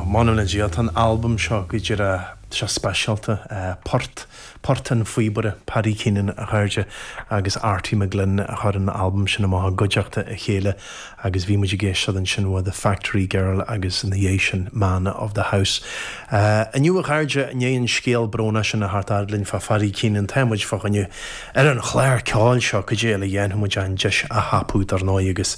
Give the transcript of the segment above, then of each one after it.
M'anam le Dia, tá an albam seo go díreach seo speisialta, Poirt, Poirt an Phíobaire Paddy Keenan a chairde agus Arty McGlynn a chuir an albam sin amach i gcuideachta a chéile agus bhí muid ag éisteacht ansin uaidh The Factory Girl agus ina dhiaidh sin Man of the House. Inniu a chairde, i ndiaidh an scéal brónach sin a theacht fhad linn fá Phaddy Keenan, tá muid fá choinne ar an chlár ceoil seo cad é eile a dhéanfadh muid an deis a thapú dar ndóigh agus.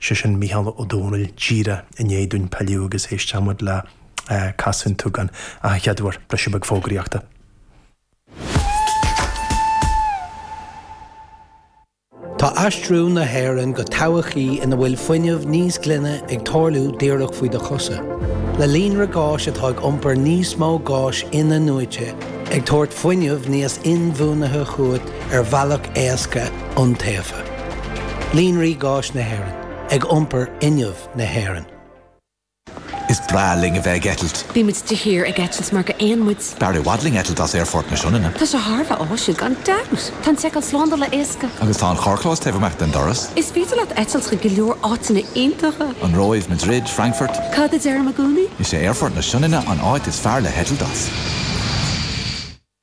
'Sé sin Mícheál Ó Domhnaill, díreach i ndiaidh dúinn pilleadh agus éistfidh muid le Casadh an tSúgáin ach an chéad uair briseadh beag fógraíochta. Tá aistriú na hÉireann go todhchaí ina bhfuil fuinneamh níos glaine ag tarlú díreach faoi do chosa, le líonra gáis atá ag iompar níos mó gáis in-athnuaite ag tabhairt fuinneamh níos inbhuanaithe chugat ar bhealach éasca iontaofa. Líonraí Gáis na hÉireann, ag iompar fhuinneamh na hÉireann. Is breá linn a bheith ag eitilt. Bímid de shíor ag eitilt mar gur éin muid. B'fhearr i bhfad linn eitilt as Aerfort na Sionainne. Tá sé thar a bheith áisiúil, gan dabht! Tá an tseiceáil slándála éasca. Agus tá an carrchlós taobh amuigh den doras. Is féidir leat eitilt chuig go leor áiteanna iontacha. An Róimh, Madrid, Frankfurt. Cad a deirim i gcónaí? Is é Aerfort na Sionainne an áit is fearr le heitilt as.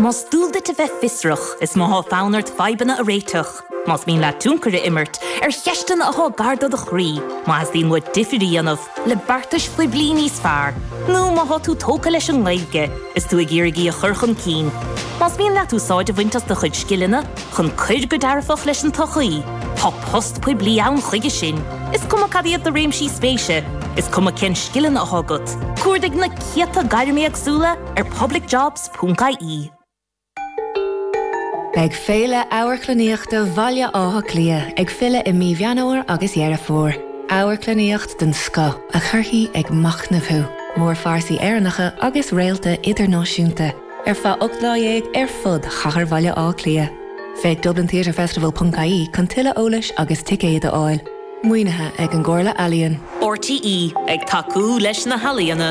Más dual duit a bheith fiosrach, is má thá fonn ort fadhbanna a réiteach, más mian leat tionchar a imirt ar cheisteanna athá gar do do chroí, má theastaíonn uait difir a dhéanamh le beartais phoiblí níos fearr, nó má thá tú tógtha leis an nGaeilge is tú ag iarraidh í a chur chun cinn, más mian leat úsáid a bhaint as do chuid scileanna chun cuir go dearfach leis an tsochaí, tá post poiblí ann chuige sin, is cuma cad iad do réimsí spéise, is cuma cén scileanna athá agat. Cuardaigh na céadta gairm éagsúla. ar publicjobs.ie. Beidh Féile Amharclannaíochta Bhaile Átha Cliath ag filleadh i mí Mheán Fhómhair agus Dheireadh Fómhair. Amharclannaíocht den scoth a chuirfidh ag machnamh thú, mórphearsaí Éireannacha agus réalta idirnáisiúnta, ar feadh ocht lá dhéag ar fud chathair Bhaile Átha Cliath. Féach dublintheatrefestival.ie chun tuilleadh eolais agus ticéid a fháil. Maoinithe ag an gComhairle Ealaíon. RTÉ ag tacú leis na healaíona.